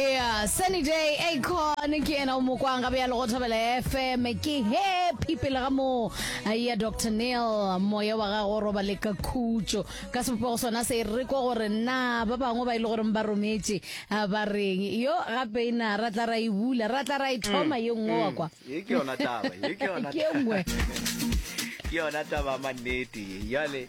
Ea, Sunny Day, Akon, ke yena o mo kwang ga bjalo go Thobela FM, ke happy pele ga moo. Aya Doctor Neil, moya wa gago o robale ka khutšo. Ka sebopego sona se re kwa gore na ba bangwe ba e le goreng ba rometše ah, ba reng. Yo gape e na ra tla ra e bula, ra tla ra e thoma ye nngwe wa kwa. ye ke yona taba ye ke yona Ke e nngwe. ke yona taba mannete ye jale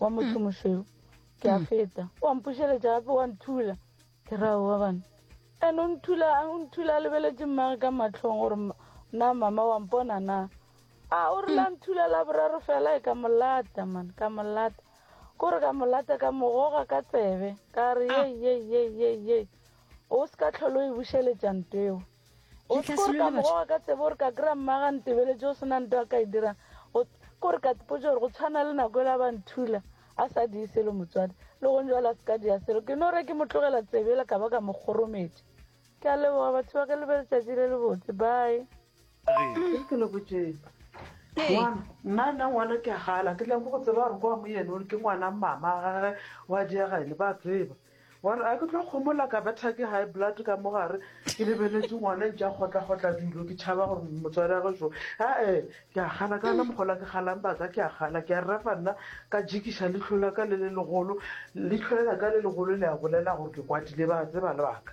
wa motho mošweu ke a feta wa mpušeletša gape wa nthula ke rao wa bana and o nthula o nthula a lebeletse mmage ka matlhong gore na mama wa mpona na a o re la mm. nthula la boraro fela e ka molata man ka molata kore ka molata ka mogoga ka tsebe ka re ah. yeyeyeyeyey o se ka tlholo e bušeletša nto eo O tla se lwele batho. Ka tsebo gore ka kry-a mmaga ntebeletse o sena nto a ka e dirang kore ka tsepotse gore go tshwana le nako ele a ba nthula a sa di selo motswadi le gong jwale a se ka dia selo ke no re ke mo tlogela tsebela ka ba ka mo kgorometša ke a leboga batho ba ka le be letšatši le le botse bye ke le botseng ngwana nna nna ngwana ke a gala ke nyako go tseba gore kwa moyene ore ke ngwana mmama gage wa diega ene ba tseba Wa re, A ke tlo kgomola ka betha ke high blood ka mo gare, ke lebeletše ngwana ntše a kgotla-kgotla dilo, ke tšhaba gore motswadi wa gešo. Ha-e, ke a kgala, ka na mokgwa la ke kgalang baka, ke a kgala. Ke a refa nna, ka jikiša leihlo la ka le le legolo, leihlo la ka le legolo le a bolela gore ke kwatile, ba a tseba le baka.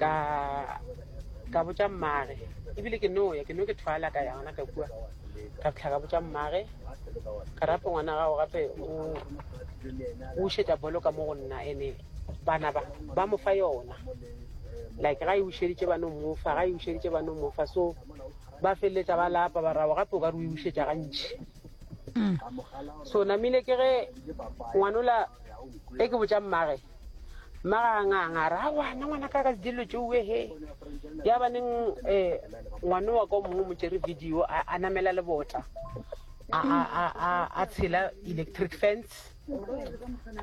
ka ka botša mmage ebile ke no ya ke no ke thwala ka yana ka kua ka fitlha ka botša mmage ka rape ngwana gago gape o ušetša bolo ka mo go nna ene bana ba ba mo fa yona like ga e ušeditše ba no mofa ga e ušeditše ba no mofa so ba feleletša ba lapa ba rago gape o ka re o e ušetša gantši so namile ke ge ngwanola e ke botša mmage magangang a re a wana ngwana ka ka dilo tšeuwe he ya baneng um eh, ngwane wa ka o mongwe mo tsere video a namela le bota a tshela electric fence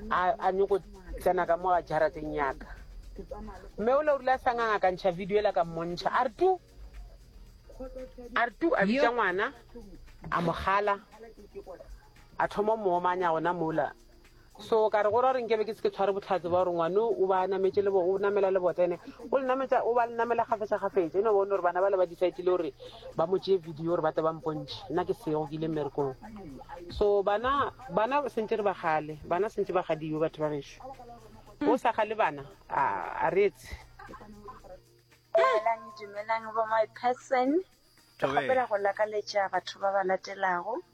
a nyoko tsena ka mo ga jarateng yaka mme o le o rile a sanganga ka ntšha video ela ka mmontšha a re tu a re tu a bitsa ngwana a mogala a thoma moomanya gona mola so ka re gore gore nkebe ke se ke tshware botlhatse ba gore ngwane o ba nametše le o namela le botene o lenametsa o ba lenamela gafetsa gafetsa ene bone gore bana ba le ba decidile gore ba mo tšee video gore ba te ba mpontšhe nna ke sego ke ile mmerekong so bana bana sentse re ba gale bana sentse ba gadiwe batho ba gešo o sa gale bana a reetse dumelang dumelang bo my person re kgopela go lakaletša batho ba ba latelago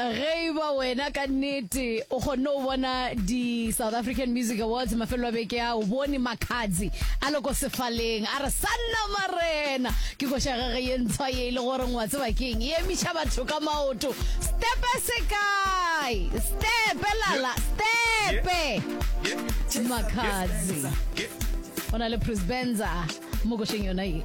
ge e ba wena ka nnete o kgonne go bona di-south african music awards mafelo a beke a o bone makhadzi a le ko sefaleng a re sanna marena ke košagege ye ntshwa ye e le gore ngwa tseba keng e emiša batho ka maoto stepe se kae stepe lala stepe makhadzi go na le presbenza mo košeng yona ye